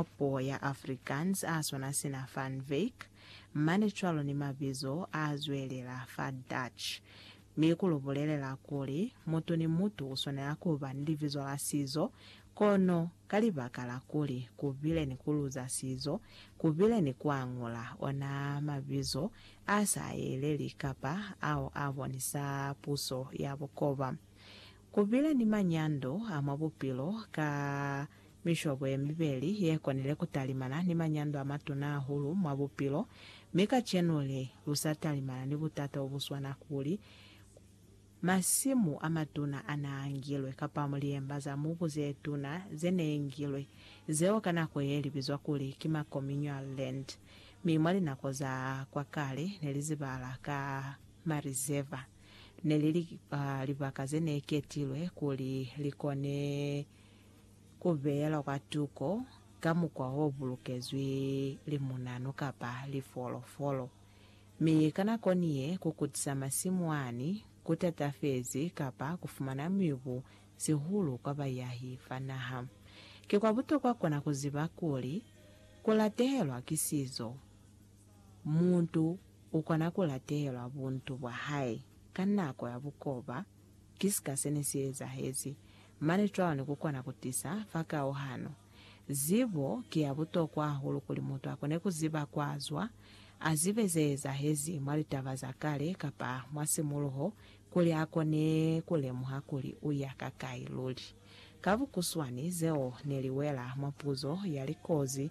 mwa puo ya Afrikaans a swana sina Van Wyk, mane cwalo ni mabizo a zwelela fa Dutch, mi ku lu bulelela kuli mutu ni mutu u swanela ku ba ni libizo la sizo, kono ka libaka la kuli ku bile ni ku luza sizo, ku bile ni ku añula ona mabizo a sa yeleli kapa ao a bonisa puso ya bukoba. Ku pila ni manyando a mwa bupilo ka mishobo ye mibeli ye konile ku talimana ni manyando a matuna hahulu mwa bupilo, mi kacenu li lu sa talimana ni butata bo bu swana kuli, masimu a matuna a n'a ngilwe kapa liemba za mubu ze tuna ze n'e ngilwe, zeo ka nako ye li bizwa kuli ki ma communal land, mi mwa linako za kwa kale ne li zibala ka marizeva. Ne li li libaka ze ne ketilwe kuli li kone ku beelwa kwa tuko ka mukwa o bulukezwi limunanu kapa lifolofolo. Mi ka nako ni ye, ku kutisa masimu ani ku tatafezi kapa ku fumana mibu, sihulu kwa bayahi fa naha. Ki kwa butokwa kona ku ziba kuli ku latehelwa ki sizo. Mutu u kona ku latelwa buntu bwa hae ka nako ya bukoba, ki sika se ne si ezahezi, mane cwalo ni ku kona ku tisa fa kauhano. Zibo ki ya butokwa hahulu kuli mutu a kone ku ziba kwa zwa, a zibe ze ezahezi mwa litaba za kale kapa mwa simuluho kuli a kone ku lemuha kuli u ya ka kai luli. Ka bukuswani, zeo ne li wela mwa puzo ya likozi